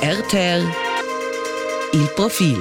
RTL Il profil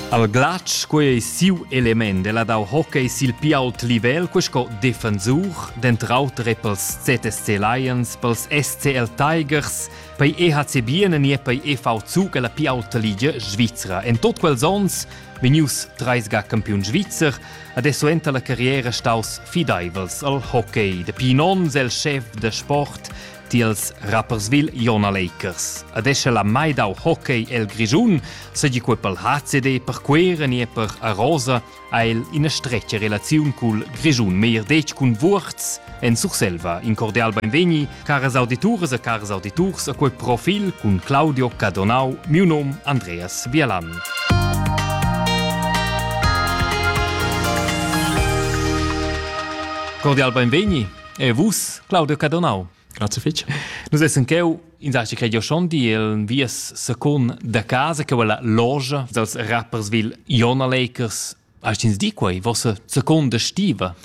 Al glatsch quei ei siu element e la dau hockey sil pli ault livel co sco defensur, dent'auter pels ZSC Lions, pels SCL Tigers, pei EHC Biene nie pei EV Zug alla pli aulta ligia svizra. En tot quels ons Vegnius treis ga campiun svizzer, adesso enta la carriera staus fideivels al hockey. Dapi in onn el chef da sport tiels Rapperswil Jona Lakers. Adesso la mai dau hockey el Grischun, segi quei pel HCD per Quera nie per Arosa, ha el ina stretga relaziun cul Grischun, meir detg cun Wurz, en Surselva. In cordial beinvegni Caras audituras e caras auditurs, a quel profil cun Claudio Cadonau, miu nom Andreas Bielan. Cordial benvegni e vus, Claudio Cadonau. Grazie fitch. Nus essen cheu in saschi che io schon di il vies secon da casa che quella loge dels rappersville Iona Lakers Hast ins di quei vossa seconda stiva?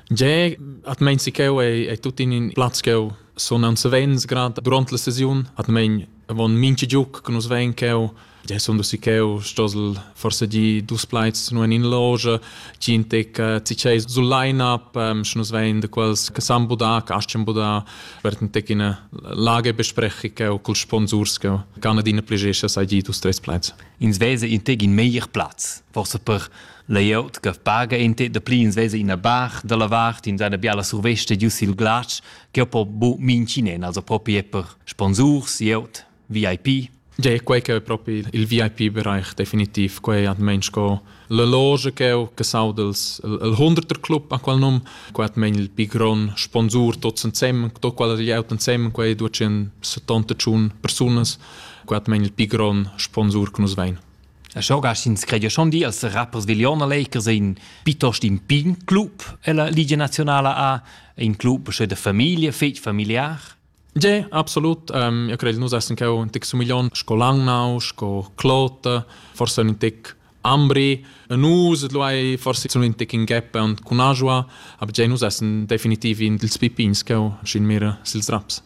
Ge, at mein si cheu ei, ei tut in in plaz cheu sonan savens grad durant la sesiun at mein avon minchi giuc che nus vein cheu Ge sono si cheu stosel forse di dus plaids nur in loge chi in tec ci chei sul line up sche nus vein de quels che san buda che aschen buda wird in tec in lage besprechi cheu col sponsors che kann adina pligescha sai di dus tres plaids ins vesa in teg in meglier plaz forse per layout che paga in te da pli ins vesa ina bar dalla vart in seine biala surveste giu sil glatsch che po bu mincinen also proprio per sponsors layout VIP Ge quei che è proprio il VIP-Bereich definitiv, quei hat mensch co la loge che ho che sau dels il hunderter club a qual num, quei hat men il pigron sponsor tot sen sem, tot qual er out en sem, quei ducen 70 tschun personas Guatmain il pi grond sponsur che nus vein. E schau gas ins credia schon di als rappers Villioner Lakers in pitost in pin club e la Liga Nazionale a in club sche de famiglia fetg familiar. Ja, absolut. Um, io credo nus essen cheu un tec sumiglion sco Langnau, sco Klote, forse un tec Ambri, nus lu hai forse zun in tec in gap cun Ajua, aber giai nus essen definitiv in dils pipins cheu sin mir sils raps.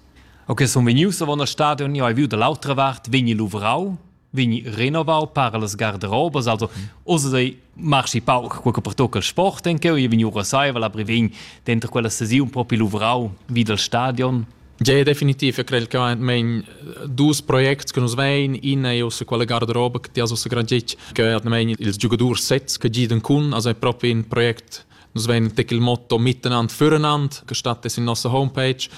Ok, sun vegnius avon al stadion, io hai viu da l'autra vart, vegni luvrau, vegni renovau para las garderobas, also osa sei marchi pauc quel che pertocca il sport en cheu, io vegni ora saiva la brevegn dentro quella sesiun propi luvrau vi dal stadion. Tgei è definitiv e crei che mein dus projects che nus vein, ina è ussa quella garderoba che ti has ussa grad detg, che hat mein ils giogadors sets che giden cun, also è proprio ein Projekt Nus vein tec il motto miteinander füreinander, che statt es in nostra homepage,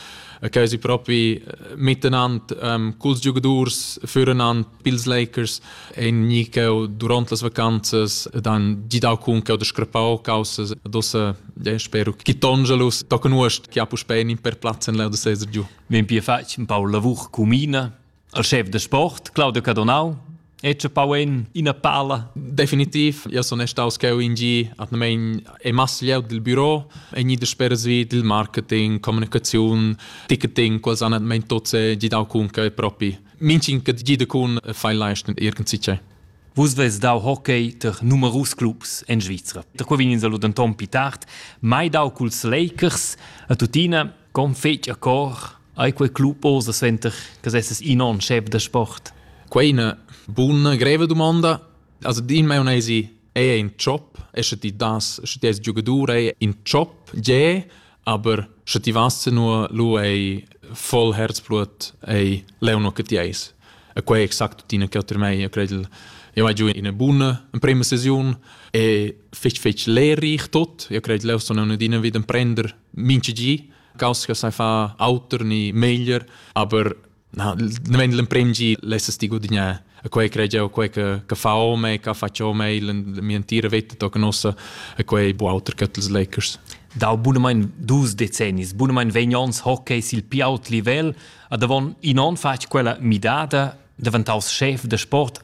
che si proprio miteinander ähm, culs giogadors füreinander pils Lakers ein ni cheu duront las vacanzas ed han gidau cun cheu da scrappau causas dossa ja, spero che Tongelus tocca nuost che ha puspei in per plaz en da sesar giu. Vegn pia fatg un pau lavur comuna al chef da sport Claudio Cadonau Ecce pauin ina pala. Definitiv, ja sono staus cheu in gi atnamein e masslieu dil büro, e ni da speras vi dil marketing, kommunikation, ticketing, quals han atmein tot se gidau cun che propi. Minching che gida cun fai leisten irgendwie c'è. Vus veis dau hockey ter numerus clubs en Svizra. Da qua vegn ins allo denton pi tard, mai dau culs Lakers, a tuttina, con fetg a cor, ai quei club osa sventer che sesses in on chef da sport? Quei è una buona, greve domanda. Also, din mai unei si, è in job, esce ti das, esce ti es giocatore, è in job, je, Aber sche ti vas nu lu ei voll herzblut ei leu no che ti eis e quei exact tina che otter mei credel io mai giù in buna in prima sesiun e fich fich lehrreich tot io credel leu sono ne dina wieder prender minci gi caus che sai fa auter ni meglier aber No, nemen l'emprem gi lessas ti gudignar a quei crei a quei che che fa ome, che faccia ome, mia entira vita tocca nossa a quei bu auter che els Lakers. Dal bunamain dus decennis, bunamain vegn ons hockey sil pi aut livel, ad avon in on fatg quella midada, daventaus chef de sport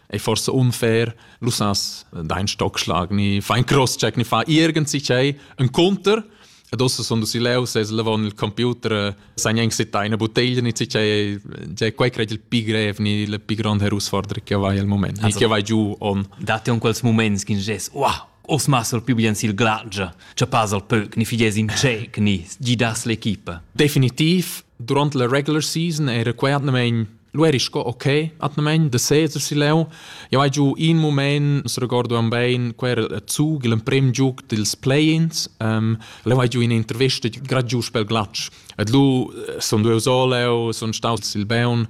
È forse unfair, lu sas dein Stockschlag ni fein Crosscheck ni fa irgend sich ei ein Konter. Ed ossa son dus leu ses levon il computer san eng sit eine bottiglia ni sich ei già quei cred il pi grev ni le pi grande herausforderung che vai al moment ni che vai giù on. Date un quels moments che ges wow os masser più bien sil glagia, cha pas al pöc, ni fides in cec, ni gidas l'equipa. Definitiv, durante la regular season era quetnamein Lu eri sco ok, atgnamein da seser si leu. Jau hai giu in mument, regorduam bein, quei era zug, l'emprem giug dils play-ins. Um, leu hai giu ina intervista grad giu pel glatsch. Et lu eh, sun deu so leu, sun staus sil Beun,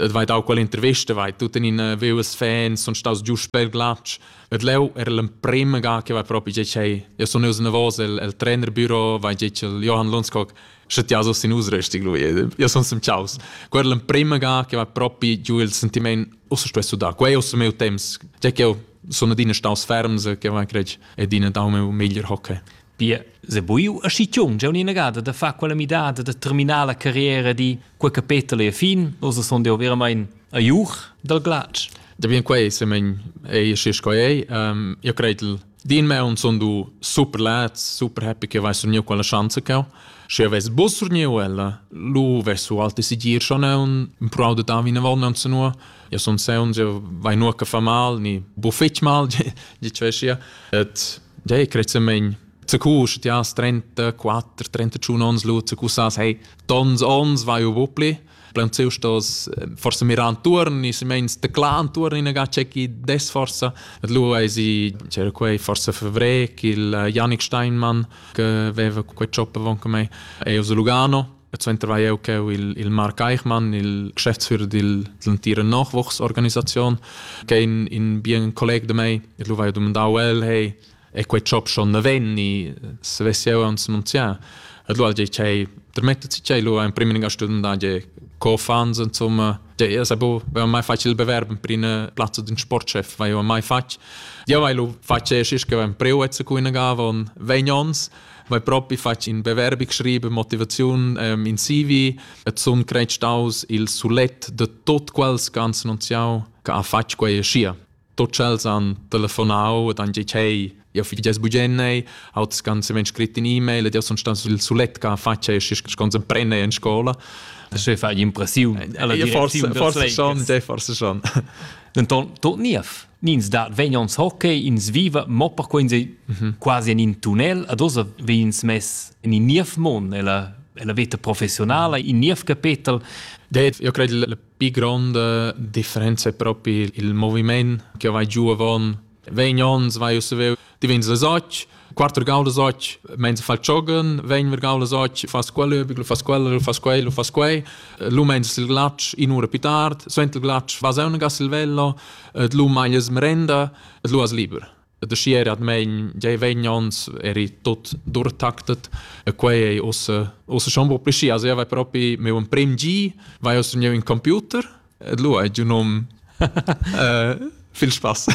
et vai dau quell'intervista, vai tut in in views fans, sun staus giu pel glatsch. Et leu era l'emprema ga che vai propi giei, io sun neus nervos el, el trainerbüro, vai giei Johann Lunskog Sche ti so sin us resti lui. Io son sem ciaus. Guarda l'emprema ga che va propi giu il sentiment ussa spesso da quei ussa meu temps. Già che io sono adina staus ferms che van crec e dina dau meu meglier hockey. Pia, se buiu a schiziun già un'ina gada da far quella midada da terminar la carriera di quel capitolo e fin, ossa son deo veramente a iuch dal glac. Da bien quei se men ei schi sco ei. Um, io credo Din meun sun du super lats, super happy che vai surniu quella schanza cheu. Sche ves bus surniu ella, lu ves su alte sigir schon neun, im prau de da vina vol neun zu nur. Ja sun seun, ja vai nur che fa mal, ni bu fetg mal, je cveschia. Et ja ich kreze mein zu kus, ja 34, 30 schon ons lu zu kus as, hey, tons ons vai u bupli. plaunsieu stos eh, forsa mirar antuorn, i meins teclar antuorn inaga c'è chi des forsa. Et lu ei si c'era quei forsa fevré il eh, Yannick Steinmann che aveva quei ciop avon con me e a Lugano E suenter war eu che il, il Mark Eichmann, il Geschäftsführer dell'entire Nachwuchsorganisation, che in, in bien Kollege de mei, e lui war domandau el, hey, e quei chop schon navenni se vess jeu uns annunzià et lo ge chei permettet si chei lo ein prim in studenta ge co fans insomma ge es abo va mai facil bewerb in prima plazza din sportchef vai mai fatg ja vai lo fatg e schis che ein preu et se kuina gavon 20 ons vai propi fatg in bewerbi geschrieben motivation ähm, in CV et sun creit staus il sulet de tot quels ganz annunziau che ha fatg quei schia tot ch'els han telefonau ed han detg hey, jau fi ges bugennei, auters ganz vegn scrit in e-mail ed jau sun stat sul sulet che faccia e sche scons emprenei en scola. Das ist eine Impression. Ja, forse, forse schon, ja, forse schon. Denton, tot niev. Nins da vegnons hockey, ins viva, mo per quei sei mhm. quasi in in tunnel, ad osa veins mess in in niev mon, ella ella veta professionala, in niev capetel. Ja, io credo le Pi gronda differenza è propi il moviment che vai giù avon. Vegn ons vai uss veu, ti vegns les och, quattro gaulas och, mens fal giogen, vegn ver gaulas och, fas quello, lu fas quello, lu fas quei, lu fas quei, lu mens il glatsch in ura più tard, svent il glatsch, vas eu gas il velo, et lu maglia es merenda, et lu as liber. ed uschi era admein giai vegn ons eri tut durtactet e quei ei ussa ussa schon bo pli schi also io vai propi meu emprim gi vai ussa giu in computer ed lu hai giu num viel spass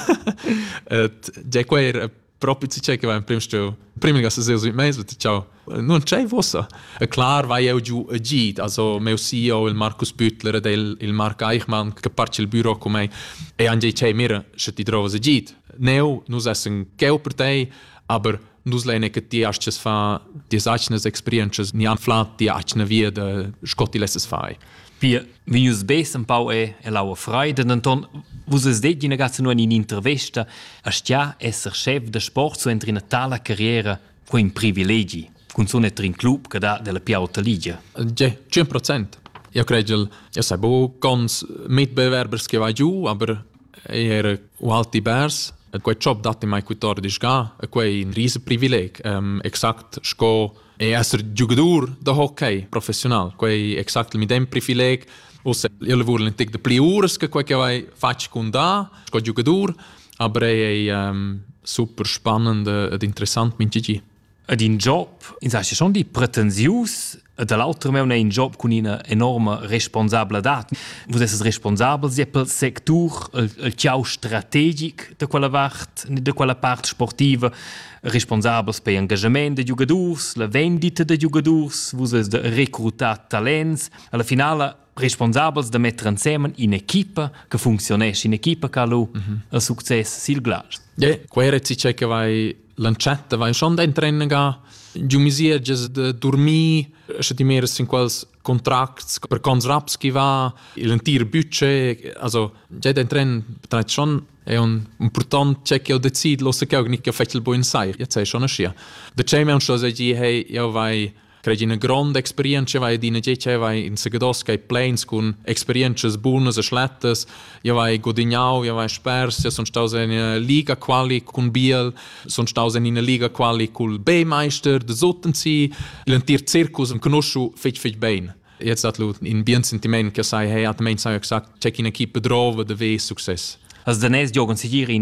ed giai quei era propi ci che va in prim stu prim ga se seo sui meis vet ciao Non c'è vossa. E clar vai eu giu e gid, also meu CEO, il Markus Büttler ed il, il Marc Eichmann, che parte il büro con me, e anche c'è mir, se ti trovas e gid. Neu, nus essen cheu per te, aber nus lene che ti astes fa die seicnes experiences ni anflat die eigene wieder scott die lesses fai. Wie wie jūs bes un pau e e laua freide denton vus es det in gasse nur in intervista a stia esser chef de sport so entri na tala carriera Quei è in privilegi, cunzun etter in club che dà della più alta ligia. Tge, 100 procent. Eu crei che eu sai bu cons mit bewerbers che va giù, aber er alti bars E quei job datti mai cutor disga, e quei in rise privileg, um, exact sco e esser giugadur da hockey professional, quei exact mi dem privileg, usse io lavur in tic de pli uras che quei che vai fatg cun da, sco giugadur, Aber è ähm, super spannend ed interessant min gigi. Ed in job, ins ha schon di pretensius, e dall'altra meuna in job cun ina enorme responsabladad. Vus esses responsabel sia pel sectur, il, il ciau strategic de quella vart, de quella part sportiva, responsabels per engagement de giugadurs, la vendita de giugadurs, vus es recrutat talents. Alla finala responsabels da metter ensemen in'equipa che funcziunesce, in'equipa che ha lu mm -hmm. il success sil glatsch. Yeah, quei era ciò che vai lanciata, vai schon in training giu misierges de dormir, sche ti meres in quels contracts per cons raps chi va, il entir budget, also già in tren trait schon è un important c'è che ho deciso lo se che ho nicchia fettel buon sai, jetzt sei schon ascia. De ce me un chose gi hey, io vai Crai ina gronda experienza vai ed ina tgei vai in segados kai pleins cun experienzas bunas e schlettas ja vai gudignau ja vai spers ja son staus in liga quali cun biel son staus in ina liga quali cul B meister de Sottenzi l'entir circus en conosciu fetg fetg bein jetzt hat lu in bien sentiment che sai hey hat mein sai exakt check in equipe drove de ve success Has danés Jürgen Sigiri in